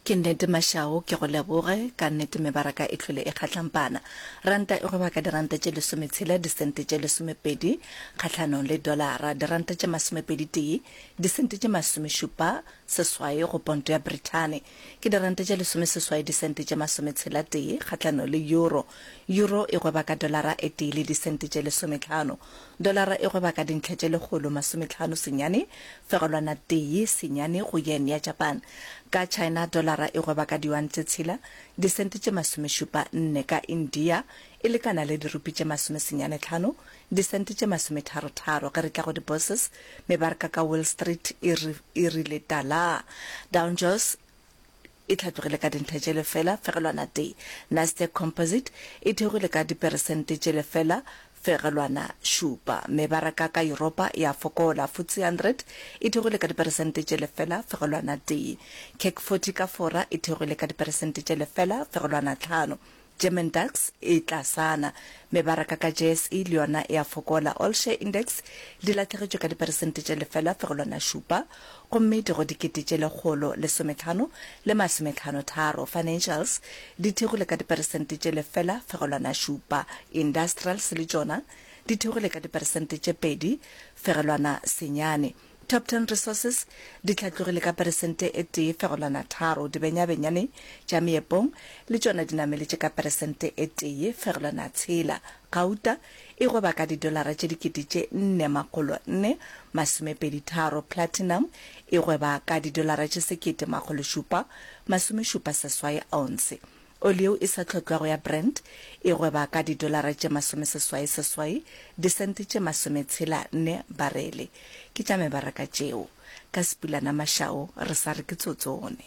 Ke nnete Mashau, ke go leboge. Ka nnete mebaraka e hlwele e kgahlampana. Ranta e gweba ka diranta tše lesometshela, disente tše lesomepedi kgahlanong le dolara, diranta tše masomepedi-tee, disente tše masomešupa seswai go ponto ya Brithani. Ke diranta tše lesomeseswai disente tše masometshela-tee kgahlanong le euro. Euro e gweba ka dolara e tee le disente tše lesometlhano. Dolara e gweba ka dintlha tše lekgolo masometlhano senyane fegelwana tee senyane go yen ya Japan. Ka China dolara e gweba ka diyuan tše tshela, disente tše masomešupa nne. Ka India e lekana le dirupi tše masome senyane tlhano, disente tše masometharo tharo. Ge re tla go di-bourses, mebarka ka Wall Street e rile talaa. Downjourss e hlatlogile ka dintlha tše lefela fegelwana tee, Nasdaq Composite e theogile ka diperesente tše lefela fegelwana šupa, mebaraka ka Yuropa e a fokola, FTSE 100 e theogile ka diperesente tše lefela fegelwana tee, CAC 40 ka Fora e theogile ka diperesente tše lefela fegelwana tlhano. German DAX e tlasana. Mebaraka ka JSE le yona e a fokola. All Share Index di lahlegetšwe ka diperesente tše lefela fegelwana šupa gomme di go dikete tše lekgolo lesometlhano le masometlhano tharo. Financials di thekgile ka diperesente tše lefela fegelwana šupa. Industrials le tšona di thekgile ka diperesente tše pedi fegelwana senyane. Top Ten Resources di hlatlogile ka peresente e tee fegelwana tharo, dibenyabenyane tša meepong le tšona di nameletše ka peresente e tee fegelwana tshela, gauta e goba ka didolara tše dikete tše nne makgolo nne masomepedi tharo, platinum e gweba ka didolara tše sekete makgolo šupa masomešupa seswai ounce. Oli yeo e sa tlhotlwago ya Brent e gweba ka didolara tše masomeseswai seswai disente tše masometshela nne barele. Ke tša mebaraka tšeo. Ka Sepulanamašao re sa re ke tsotsone.